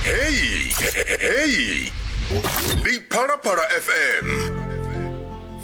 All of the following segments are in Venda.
heyi heyi ndi phalaphala fm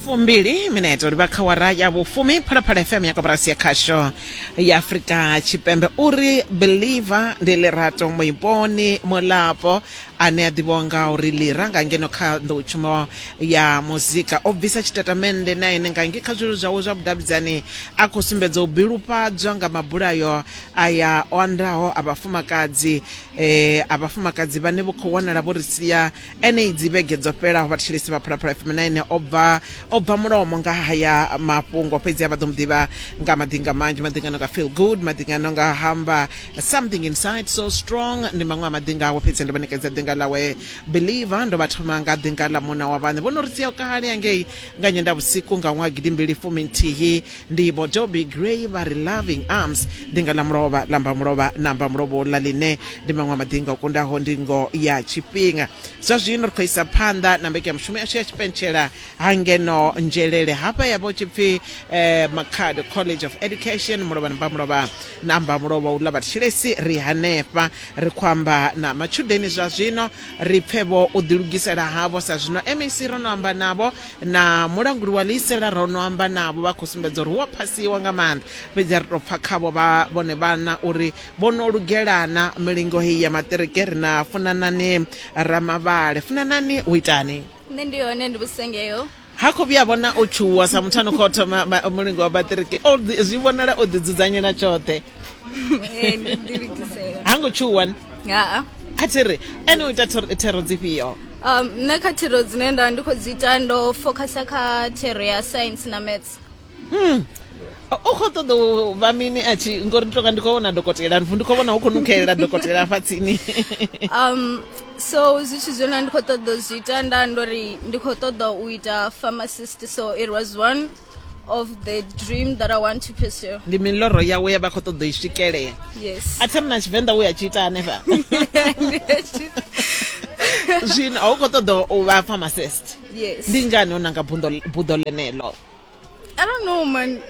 fumbili mineto ri vha kha wara ya vhufumi phalaphala fm ya koporasi ya khasho ya afurika tshipembe uri believer ndi lirato muiponi mulapo ane a ḓivhiwa nga uri lira nga ngeno kha nḓowetshumo ya muzika o bvisa tshitatamennde na ene nga nge kha zwililo zwawe zwa vhudavhidzani a khou sumbedza u bilufhadzwa nga mabulayo aya o andaho a vhafumakadzi eh a vhafumakadzi vhane vho khou wanala vho ri sia ene idzi vhege dzo fhelaho vhathetshelesi vha phalaphala fm 9 o bva o bva mulomo nga haya mafhungo fhedzi a vha ḓo mu ḓivha nga madinga manzhi madingano nga feel good madingano nga hamba something inside so strong ndi maṅwe a madinga awe fhedzi ndo vha ṋekedza dinga ḽawe believer ndo vha thoma nga dinga ḽa muna wa vhaṋe vho no ri sia kale angei nga nyenda vhusiku nga ṅwaha gidi mbili fumi nthihi ndi vho doby gray vha ri loving arms dinga ḽa mulovha ḽa mba mulovha na mba mulovha uḽa ḽine ndi maṅwe a madinga o kundaho ndingo ya tshifhinga zwa zwino ri khou isa phanḓa na mbekanyamushumo yashu ya tshipentshela ha ngeno nzhelele hafha ya vho tshipfi eh, makhado college of education mulovha na mba mulovha na mba mulovha uḽa vhathetshelesi ri hanefha ri khou amba na matshudeni zwa zwino ri pfe vho u ḓilugisela havho sa zwino mec ro no amba navho na mulanguli wa ḽiisela ro no amba navho vha khou sumbedza uri hu a phasiwa nga maanḓa fhedzi ri tou pfa khavho vha vhone vhana uri vho no lugelana milingo heyi ya maṱiriki ri na funanani ramavhale funanani u itani nṋe ndi hone ndi vhusengeo ha khou vhuya vhona o tshuwa sa muthu ano khou thoma ma- mulingo wa maṱiriki O ḓi- zwi vhonala o ḓidzudzanyela tshoṱhe ee ndi ḓilugisela ha ngo tshuwa ni haa kha thiri ene u ita thero dzifhio um nṋe kha thero dzine nda ndi khou dzi ita ndo focusa kha thero ya science na maths hmm. u khou ṱoḓa u vha mini a tshi ngori ndi tonga ndi khou vhona dokotela ri ndi khou vhona hu khou nukhelela dokotela afha tsini um so zwithu zwine ndi khou ṱoḓa u zwi ita nda ndo ri ndi khou ṱoḓa u ita pharmacist so it was one of the dream that I want to pursue. Ndi miloro yawe ya vha khou ṱoḓa i swikelela. Yes. A themna Tshivenḓa we a tshi ita hanefha. Zwino a u khou ṱoḓa u vha pharmacist. Yes. Ndi ngani u nanga buḓo ḽenelo? I don't know man.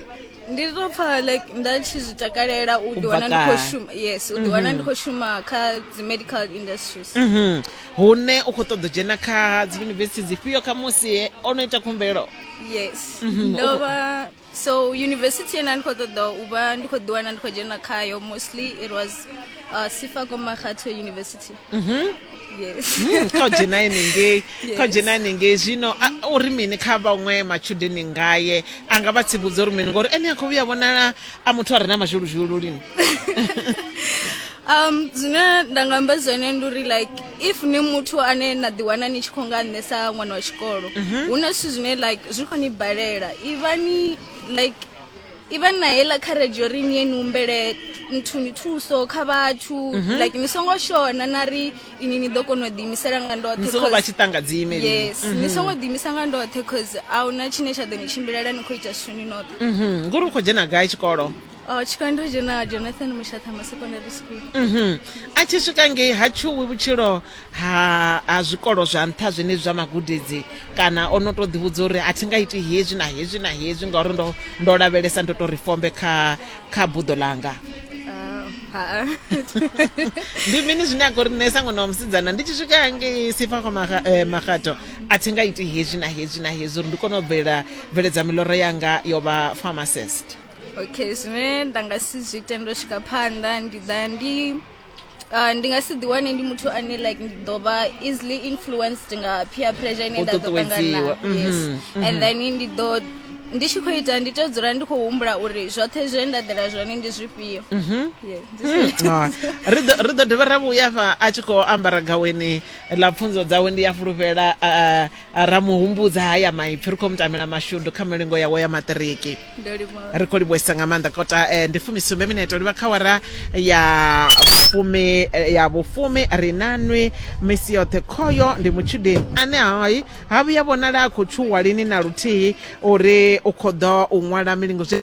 ndi to pfa like nda tshi zwi takalela u ḓiwana ndi khou shuma yes u ḓiwana ndi mhm. khou shuma kha dzi medical industries mhm. hune u khou ṱoḓa dzhena kha dzi yunivesithi dzifhio kha musi o no ita khumbelo yes mhm. ndo vha so university ena ndi khou ṱoḓa u vha ndi khou ḓiwana ndi khou dzhena khayo mostly it was uh, sifa komakhatho university mhm. yes hmm, kha u dzhena henengei kha u dzhena henengei zwino u ri mini kha vhaṅwe matshudeni ngaye a nga vha tsivhudza uri mini ngori ene a khou vhuya vhonala a muthu a re na mazhuluzhulu lini um zwine nda nga amba zwone ndi uri like if ni muthu ane na ḓiwana ni tshi khou nga nṋe sa ṅwana wa tshikolo mhm. hu na zwithu zwine like zwi khou ni balela ivhani like ivhani na heiḽa kharedzhi yo ri ni ye ni humbele nthuni thuso kha vhathu mhm. like ni songo shona na ri ini ni ḓo kona u ḓiimisela nga ndoṱheyes mhm. ni songo ḓiimisa nga ndoṱhe cause a huna tshine tsha ḓo ni tshimbilela ni khou ita zwithu ni noṱhe ngori u khou dzhena gai tshikolo Oh, tshikando tshi na jonathan mushathama secondary school Mhm. a tshi swika ngei ha tshuwi vhutshilo ha ha zwikolo zwa nṱha zwenezwi zwa magudedzi kana o no tou ḓivhudza uri a thi nga iti hezwi na hezwi na hezwi ngauri ndo ndo lavhelesa ndo tou ri fombe kha kha buḓo langa Ah, ha ndi mini zwine a khou ri nṋe sangona wa musidzana ndi tshi swika hangei sifa kwa maga- eh, magato a thi nga iti hezwi na hezwi na hezwi uri ndi kone u bvela bveledza miloro yanga yo vha pharmacist okay zwine nda nga si zwi ite ndo swika phanḓa ndi ḓa ndi Uh, ndi nga si ḓiwane ndi muthu ane like ndi ḓo vha easily influenced nga peer pressure ine nda ḓo ṱangana mhm, yes mhm. and then ndi ḓo ndi tshi khou ita ndi tea dzula ndi khou humbula uri zwoṱhe zwe nda ḓela zwone ndi zwifhio mhm. hmm. ah. ri ḓo dovha ra vhuya fa a tshi khou ambara gaweni ḽa pfunzo dzawe ndi ya fulufhela ra mu humbudza haya maipfi ri khou mutamela mashudu kha milingo yawe ya maṱiriki ri khou livhuesa nga maanḓa kota eh, ndi fumisumbe minete u livha kha wara ya fumi eh, ya vhufumi ri na nwi misi yoṱhe khoyo ndi mutshudeni ane hai ha vhuya vhonala a khou tshuwa lini na luthihi uri u khou ḓo u ṅwala milingo zwi